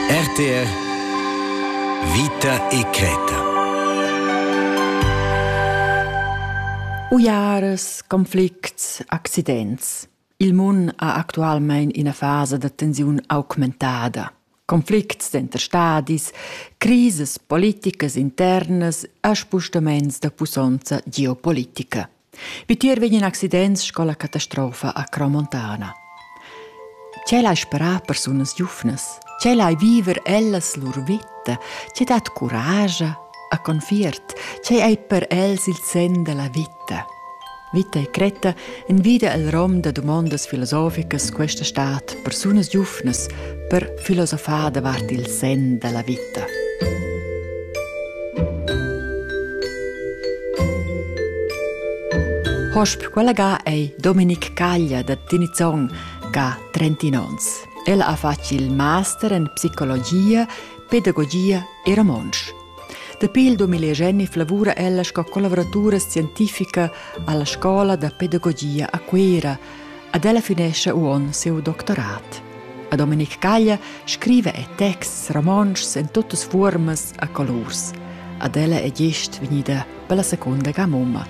RTR Vita e creta Uiaras, conflicts, accidents. Il mun ha actualmein ina fasa da tensiun augmentada. Conflicts denter stadis, crises politicas internas e spostaments da pussonza geopolitica. Vitier vegn in accident sco la catastrofa a Cromontana. Tgei lai sperar persunas giuvnas? Tgei lai viver ellas lur vita? Tgei dat curage a confiert? Tgei ei per els il sen della vita? Vita e cretta envida el rom da domondas filosoficas questa stat persunas giuvnas per filosofar davart il sen da la vita. Hosp quella ga ei Dominic Caglia da Tinizong ca 30 ons. El ha fatg il master en psicologia, pedagogia e romontsch. Dapi il 2010 lavura ella sco collaboratura scientifica alla scola da pedagogia a Cuera, Ad ella finescha uonn siu doctorat. A Dominic Caglia scriva e texts romontschs en tuttas fuormas a colurs. Ad ella è gist vegnida per la seconda ga mumma.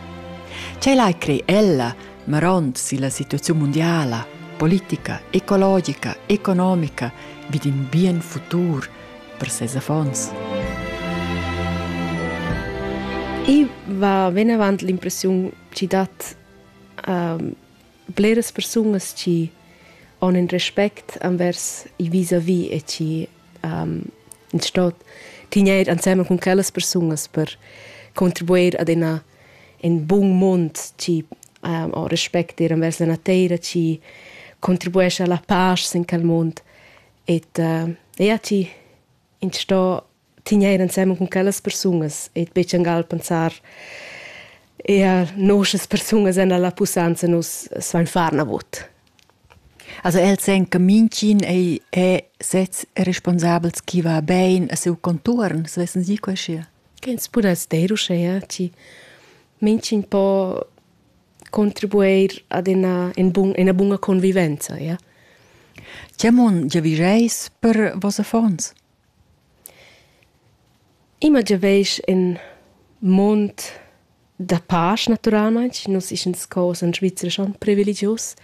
Ce lai crei ella, marond si la situazione mondiala, politica, ecologica, economica, vid in bien futur per ses affons? Ich war, wenn avant l'impressione ci dat uh, bleras persunas chi han in respect envers il vis-à-vis e chi um, in stot tigner ansemen con quellas persunas per contribuir ad una in bun mund chi um, o respect ir envers la natura chi contribuisce alla pace in quel mund et uh, ja chi in sto tigneir ensemen cun quellas persungas e betg angal pensar eher nosas persungas en la pussanza nus svein far navot. Also el sen che mincin ei è sez responsabels chi va bein a seu conturn, se vessen sie quesche. Kens pudess der uschea, ci mincin po contribuir ad una, in, bun, una bunga convivenza, ja? Tiamon, ja vigeis per vos affons? Imma giaveisch in mund da pasch natüralmaing. Nus ischen sco in Svizra schon privilegius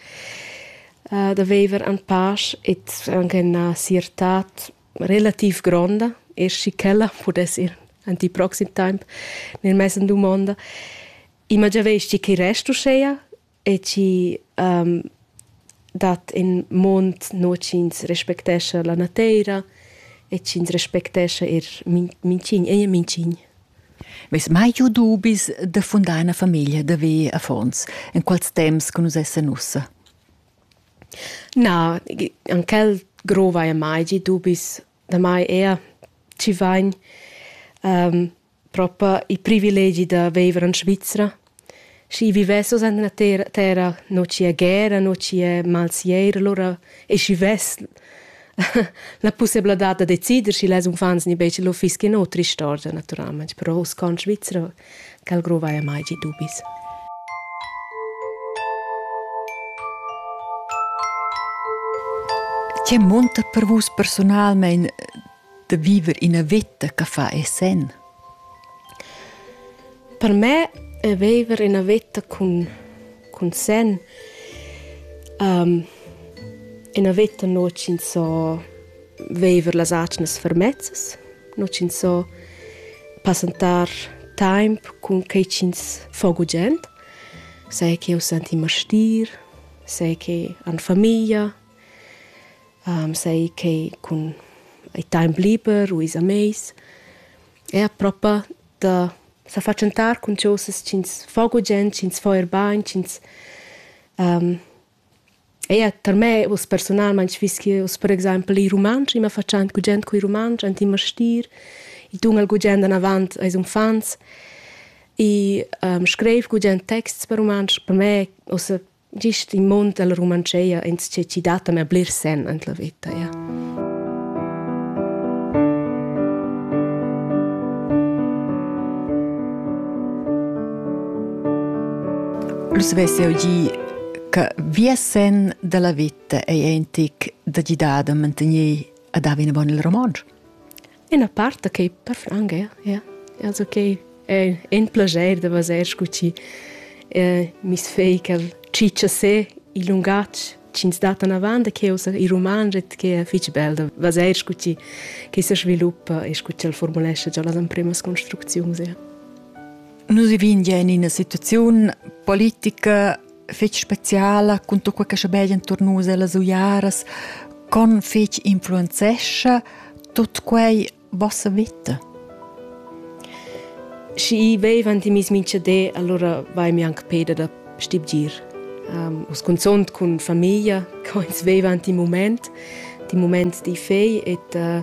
da viver in pasch ed anche üna siertà relativ gronda, eir schi ch'ella pudess ir aint il proxim temp nel mez in dumonda. Imma giaveisch tgi chi rest uschea? e chi um, dat in mond no chi'ns respectescha la nateira e chi'ns respectescha eir minchin e minchin. Veis mai giu dubis da fundar una famiglia da ve affons in quals temps che nus essen ussa? Na, an quel grova e mai gi dubis da mai er ci vain um, propa il privilegi da viver in Svizra. Schi vivessos en la terra, terra non ci è guerra, non ci è malsier, allora e schi vess la possibilità da decider schi les unfants ni bece lo fischin o tristorgia naturalmente, però us con Svizra cal grova e mai gi dubis. Che monta per vus personalmente da viver ina veta che fa e sen. Per me è viver ina veta cun, cun sen um, ina veta no ch'ins so viver las atgnas fermezzas, no ch'ins so passentar temp cun quei ch'ins fa gugent, sai che eu senti mastir, sai che an famiglia, sai che cun il temp liber u ils amis er propa da sa fatschentar cun chosas ch'ins fa gugent, ch'ins fa er bain, ch'ins um, Eir tar me, uss personalmain fiss eu per exempel il rumantsch, immer fatschent gugent cu il rumantsch, ant immer stir. I tungel gugent anavant als uffants. I um, screiv gugent texts per rumantsch. Per me, ossa Gist in mund dalla Rumantscheia ins che ci dat a bler sen en la veta. Ja. Lu svessi eu gi che via sen dalla vita ei entic da gidar da mantener ad haver una bona il romansch. Ina part da quei parfum gea, ja. Also quei è in plascher da vaser sco ti. Eh, mis fei quel cicciasé il lungatg ch'ins dat anavant da cheu sa il romanget che è fitg bel da vaser sco ti che se sviluppa e sco ti el formulesce già las emprimas construcziuns ja. Nus vivin ja in ina situaziun politica fetg speciala cun tut quei che schabegia entuorn nus ellas uiaras con fetg influenzescha tut quei vossa vita Schi i vevan ti mis mincha de, allora vai mi anche peda da stibgir. Um, us consont cun famiglia, co ins vevan ti moment, ti moment di fei et uh,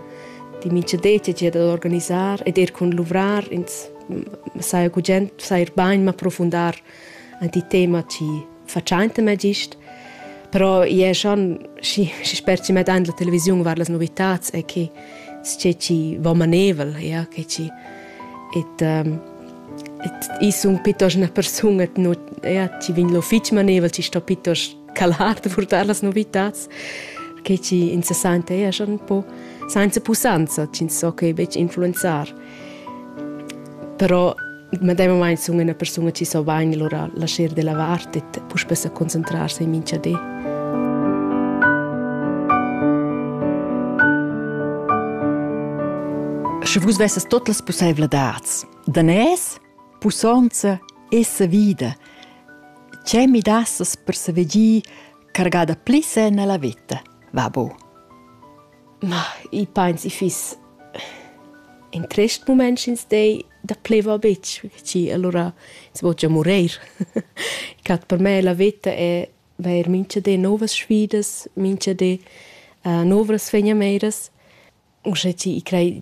di mincha de ti da organisar et er cun luvrar ins mm, sai cu gent sai ir bain ma profundar ant i tema chi fatschainta mê gist. Però i è schon schi, schi sper chi met an la televisiun var las novitats e che sce chi va manevel, ja, che chi et um, et i sun pitos üna persunga no, ja, chi vegn lo fich manevel, chi sto pitos calar da purtar las novitats, che chi in se sente ja schon un po senza pusanza, chi so che becc influenzar. Però medemamain sun üna persuna chi so bain lura lascher da lavar e puspè sa concentrarsi in mincha di. Sche vus vessas tot las pussaivladads, danès, pussonza e savida, che mi dassas per saver gi cargada pli sen alla vita, va bu? Ma i pains i fiss in trist mument sch'ins dei da pleva betg, perche alura ins vo gia mureir. I cat per me la veta è vair mincha di nouvas sfidas, mincha di novas fegnameiras. Uschè chi i crei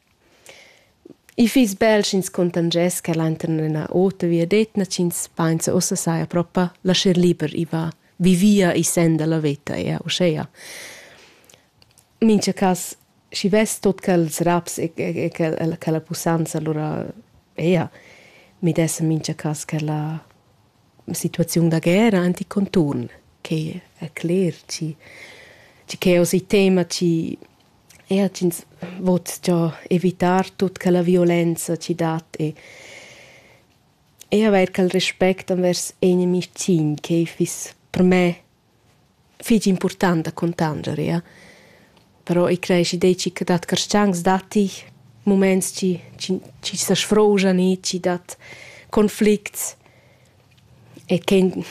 I fiss bel sch'ins contangess quel enturn ina ota viadetna ch'ins pensa ussa saja propa lascher liber i va vivia i senda la veta ea uschea. Mincha cas schi vess tot quels raps e e quella quella pussanza lura ea mi dess in mincha cas quella situaziun da guerra anticonturn che è cler ci ci che è osi tema ci er ch'ins vot già evitar tut che la violenza ci dat e e avair quel respect envers inimis cin che fiss per me fich important da cuntanger, ja. Però i creesci deci che dat carschancs datti muments chi chi chi sa sfrouschan i, chi dat conflicts e ch'en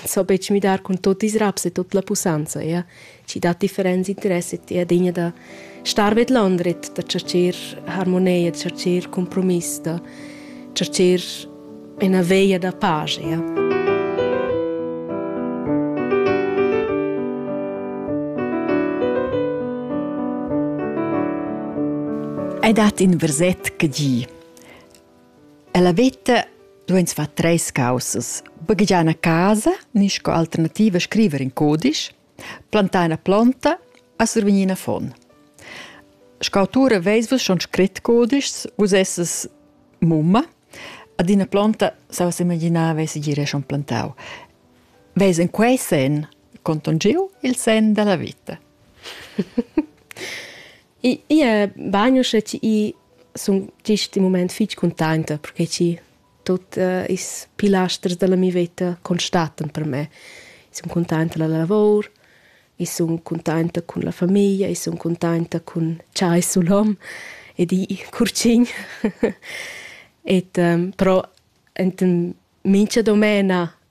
so betg midar cun tot ils raps e tot la pussanza, ja. Chi dat differents interess e ti adegna da star ved l'andret, da tschercher harmonia, tschercher cumpromiss, da tschercher Ina veia da pagia. Ei dat in versett che di. Ella veta dueins far treis caussas. Baghegiar una casa, ni sco alternativa scriver in codice, Plantar ina plonta a survegnir in affon. Scautura veis vus schon scrit codischs, vus esses mumma, ad ina plonta, sa vus imaginare, veis gire schon plantau. Veis in quei sen conton giu il sen della vita. I è bagno sche ti sun tisti moment fitg contenta perché ti tut uh, ils pilasters della mia vita constatan per me. Io sun contenta della lavor, io sun contenta cun la famiglia, io sun contenta cun chai sul hom e di curcin. et um, però enten mincha domena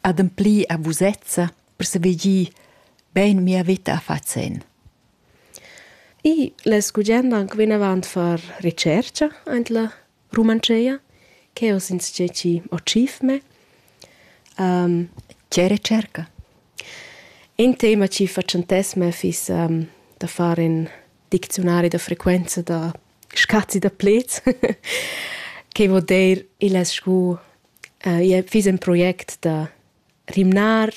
ademplir a vusezza per saver gir bein mia veta a far zenn. I less gugent anche vinavant far ricerca en la Rumantscheia, che ho since che ci ho cif me. Um, che ricerca? In tema ci facentess me fis um, da fare in diczionari da frequenza da scazzi da plets, che vuol dir il es scu Ia fiss in project da rimnar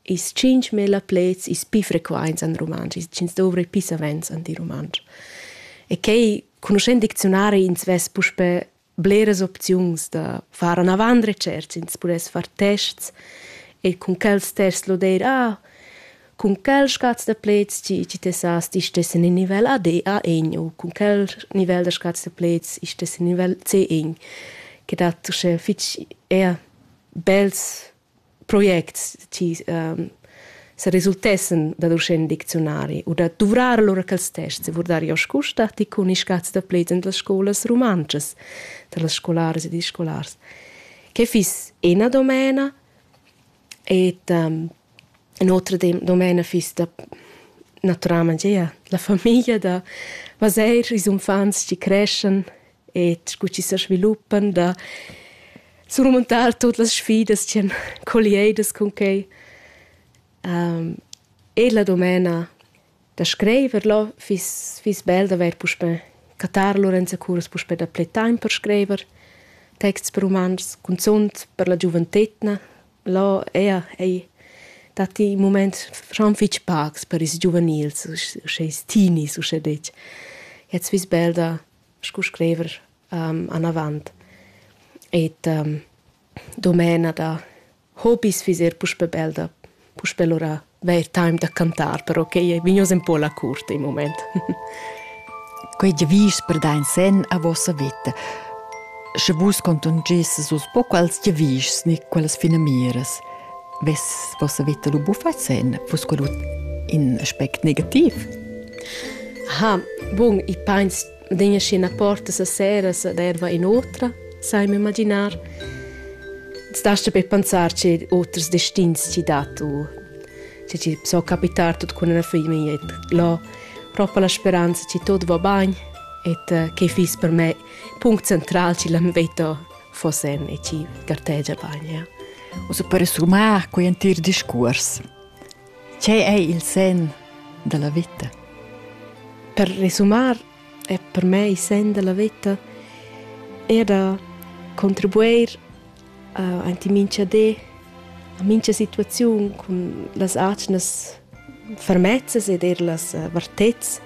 ils tschintgmila pleds ils pi frequaints en rumantsch, ch'ins dovri pi savens en il rumantsch. E quai, conoschend dicziunari, ins vess puspè bleras opziuns da far anavant recertgs, ins pudess far tests e cun quels tests lo dir, ah, cun quel scaz da pleds ti, ti tessas ti stessen in nivel AD A1 u cun quel nivel da scaz da pleds ich stessen nivel C1, che dat uschè fitg er bels projects ti ähm, se resultessen dad uschè in dicziunari u da duvrar lura quels tests e vurdar jo scusta ti cun i scaz da pleds en las scolas rumantschas, da las scolaras ed ils scolars. Che fiss ina domena Et um, un otra domena fiss da naturalment gia la famiglia da vaser ils uffants chi creschan et cu chi se sviluppan da surmontar tot las sfidas chi han collieidas cun quei. Um, e la domena Da scriver là fiss fiss bel d'avair puspè cattar lur enzacurs puspè dapli taimp per scriver texts per umans, cunzunt per la giuventetgna. Là ea ei datti in mument schon fitg pacs per ils giuvenils, uschè ils teenies uschè detg. Jetzt fiss bel da scu scriver anavant. Et domena da Hobis fiss er puspè bel da puspè lura avair time da cantar, però quai è vegnius un po la curt il moment. Quei giavisch per da in sen a vossa vita. Sche vus contungisses uss po quals giavischs ni quelles finamiras, vess vossa vita lu buffat sen, vus quel in aspect negativ? Ha, bun, i pains adegna scena porta seseras da erva in otra, sai mi imaginar. Stasta per pensar che oters destins ci dat o che ci so capitar tut con una figlia et lo proprio la speranza che tot va bene et eh, che fis per me punct central ci la veto fossen e ci gartegia bene. Ja. O se per sumar quei entir discurs. Tgei ei il senn dalla veta? Per resumar è per me il senn della veta er da contribuir uh, ant in mincha di a mincha situaziun cun las atgnas fermezzas ed er las uh, vartezs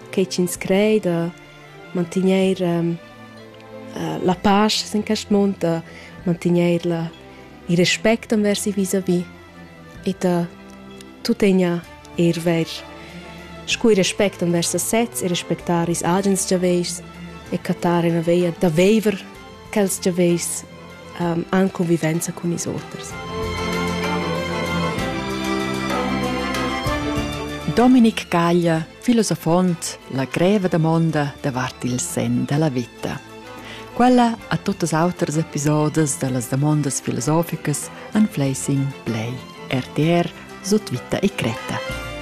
che ch'ins crei da mantegner um, uh, la pace in quest mund, da mantegner la, il respect envers i vis-a-vis Ita tuttegna eir ver. Scu ir respect envers a sezs e respectar ils agens giaveischs e cattar ina veia da veiver quels giaveischs um, an convivenza cun is oters. Dominic Caglia, filosofont, la greva damonda davart il sen della vita. Quella a tuttas auters episodas da las damondas filosoficas an Flacing Play, RTR, Sutvita e Cretta.